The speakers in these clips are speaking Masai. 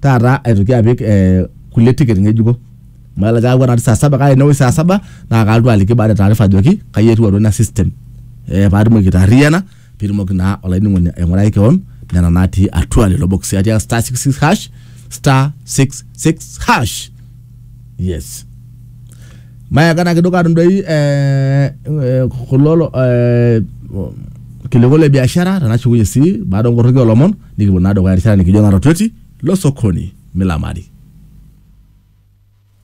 taata aitoki apik eh, kulie ticket ng'ejuko amu elelek aewuo natii saa saba kake enewueji saa saba naa kalotu aliki baada e taarifa ajoki kai etiu atua ina system eh, paatumoki aitaarriyiana piitumoki naa olainining'oni aing'urai kewon nena natii atua lelo bokisi atiaka star 66 hash star 66 hash yes mayaka na kidogo atum doi eh, eh, kulo eh, kiliku le biashara tenashukunye sii baada onkorroki olomon Nikipuo naa dukuya erishata nikijo natotweti lo sokoni milamari.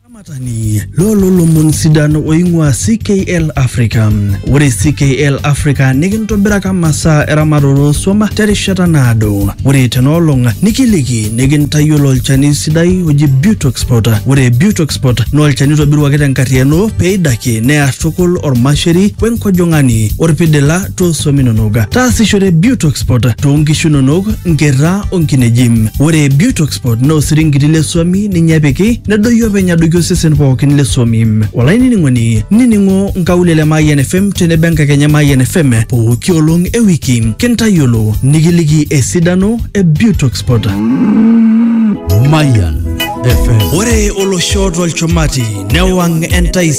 Olamatani loo lolomon sidan oing'ua CKL Africa. Ore CKL Africa nikintobiraka masaa eramatare oo swam terishata naado. Ore tena olong nikiliki nikintayiolo olchani sidai oji Butoxpot. Ore Butoxpot naa olchani oitobiruaki tenkarriyiano peidakie near tukul ormasheri wenkojong'ani orpidila too swam inonok. Taasishore Biotoxport too nkishu inonok, nkerra o nkineji. Ore Biotoxport naa osiringiti le swami ninye epiki nedoyio openy adoiki osesen pookin le swami. Olainining'oni, nining'o nkaulele Mayian FM tenebo enkakenya Mayian FM pooki olong e wiki kintayiolo nikiliki esidano e Biotoxport. Mayan FM. Ore olosho tolchumati newang' entaisere.